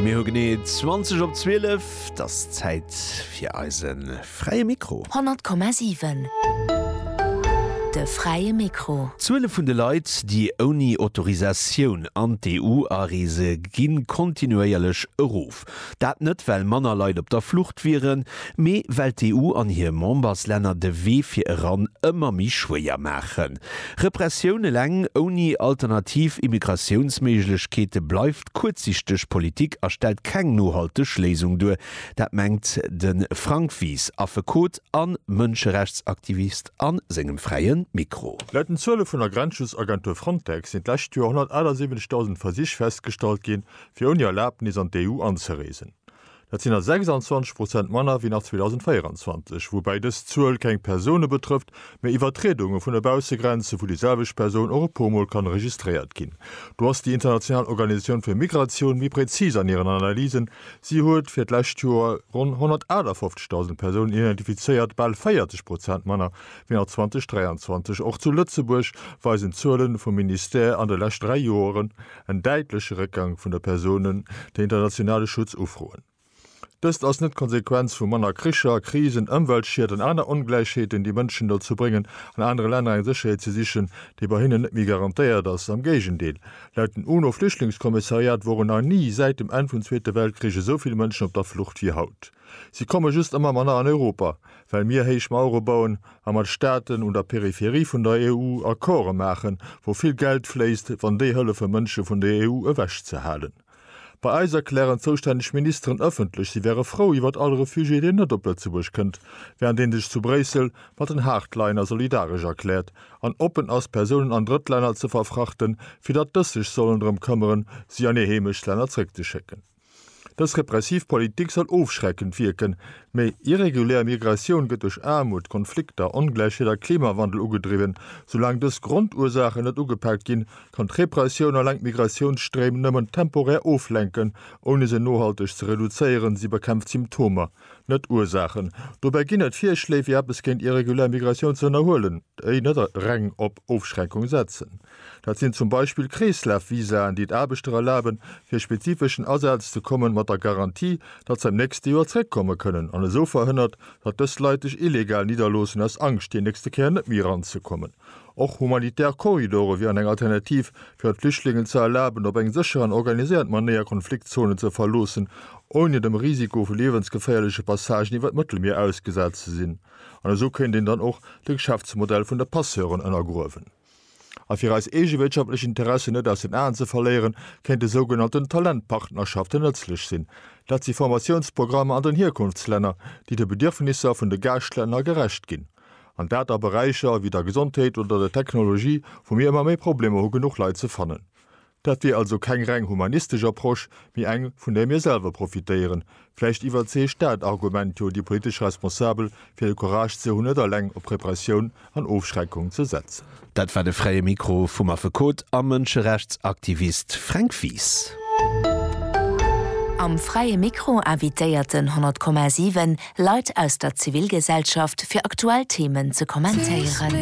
Mir hu genee 20 op 12, 't ass Zäit fir eise Fräie Mikro. 100,7 De Fräie Mikro. D'Zuele vun de Leit, déi ouni Autorisatioun an d'EU areese ginn kontinuéierlech erof. Dat net well manner Leit op der Flucht wieren, mee well d'EU an hir Memberslänner de Wee fir eran ëmmer méi schwéier maachen. Repressioun eleng ouni alternativ Immigratiounsméiglechkeete bleift kuerzsichteg Politik a stellt keng nohalteg Léisung duer. Dat mengt de Frank Wies, Affekot a Mënscherechtsaktivist a sengem Fräie Mikro. Laut den Zuele vun der Grenzschutzagentur Frontex sinn d'lescht Joer 178.000 Versich festgestallt ginn, fir ouni Erlabnis an d'EU anzereesen. Dat sinn der 26 Prozent manner wéi nach 2024, woubäi dës Zuel keng Persoune betrëfft, mä Iwwertriedunge vun de Baussegrenze, wou déi selwecht Persoun och e puer Mol kann registréiert ginn. Do ass déi international Organisatioun fir Migratioun méi präzis an hiren Analysen, Si huet fir d'lescht Joer ronn 158.000 Persounen identifizéiert, bal 40 Prozent manner wéi nach 2023. Och zu Lëtzebuerg weisen d'Zuele vum Ministère an de lescht dräi Joeren, En däitleche Réckgang vun der Persounen, déi internationale Schutz ufroen. Dëst ass net d'Konsequenz vu manner Kricher, Krisen, Ëmweltschied an aner Ongläichheeten, déi Mënschen dozou bréngen, an anere Länner eng Sécherheet ze sichen, déi bei hinnen net méi garantéiert ass. Am Géigendeel, laut den UNO-Flüchtlingskommissariat woren nach ni säit dem Enn vum Zweete Weltkrich esou vill Mënschen op der Flucht wéi haut. Si komme just ëmmer manner an Europa, well mir héich Mauere bauen a mat Staaten un der Peripherie vun der EU Accorde maachen, wou vill Geld fléisst, wann déi hëllefe Mënsche vun der EU ewechzehalen. Bei eis erklären zoustänneg Ministeren ëffentlech, si wäre frou iwwert all Refugié, deen net op Lëtzebuerg kënnt, während een sech zu Bréissel mat den Hardliner solidaresch erkläert an oppen ass, Persounen an Drëttlänner ze verfrachten, fir datt dës sech sollen drëm këmmeren, si an hir Heemechtstlänner zréckzeschécken. Dës repressiv Politik soll ofschreckend wierken. Méi irregulär Migratioun gëtt duerch Aarmut, Konflikter, Ongläichheet a Klimawandel ugedriwwen. Soulaang dës Grondursachen net ugepaakt ginn, kann d'Repressioun eleng d'Migratiounsstréim nëmmen temporär oflenken, ouni se nohalteg ze reduzéieren. Si bekämpft Symptomer, net d'Ursaachen. Dobäi ginn et Virschléi, wéi eppes géint irregulär Migratioun ze ënnerhuelen, déi net reng op Ofschreckung setzen. Dat sinn zum Beispill Kreeslafvisaen, déi et Aarbechter erlaben, fir e spezifeschen Asaz ze kommen, mat der Garantie, datt se am nächste Joer zeréckkomme kënnen, an esou verhënnert, datt dës Leit sech illegal nidderloossen aus Angscht, déi nächste Kéier net méi eranzekommen. Och humanitär Korridore wieren eng Alternativ, fir et Flüchtlingen ze erlaben, op eng sécher an organiséiert Manéier Konfliktzonen ze verloossen, ouni dem Risiko vu liewensgeféierleche Passagen iwwer d'Mëttelmier ausgesat ze sinn. An esou kéint een dann och de Geschäftsmodell vun de Passeuren ënnergruewen. A fir eis eege wirtschaftlech Interessen net aus den Aen ze verléieren, kéinte sougenannten Talentpartnerschaften nëtzlech sinn. Dat si Formatiounsprogrammer an den Hierkunftslänner, déi de Bedierfnisser vun de Gaaschtlänner gerecht ginn. An dat a Beräicher wéi der Gesondheet oder der Technologie, wou mir ëmmer méi Problemer hu genuch Leit ze fannen. Dat wier also keng reng humanistesch Approche, mee eng, vun där mir selwer profitéieren. Vläicht iwwerzeegt dat Argument jo déi politesch Responsabel, fir de Courage ze hunn, net alleng op Repressioun an Ofschreckung ze setzen. Dat war de Fräie Mikro vum Affekot a Mënscherechtsaktivist Fränk Wies. Am Fräie Mikro invitéiert den 100,7 Leit aus der Zivilgesellschaft, fir aktuell Themen ze kommentéieren.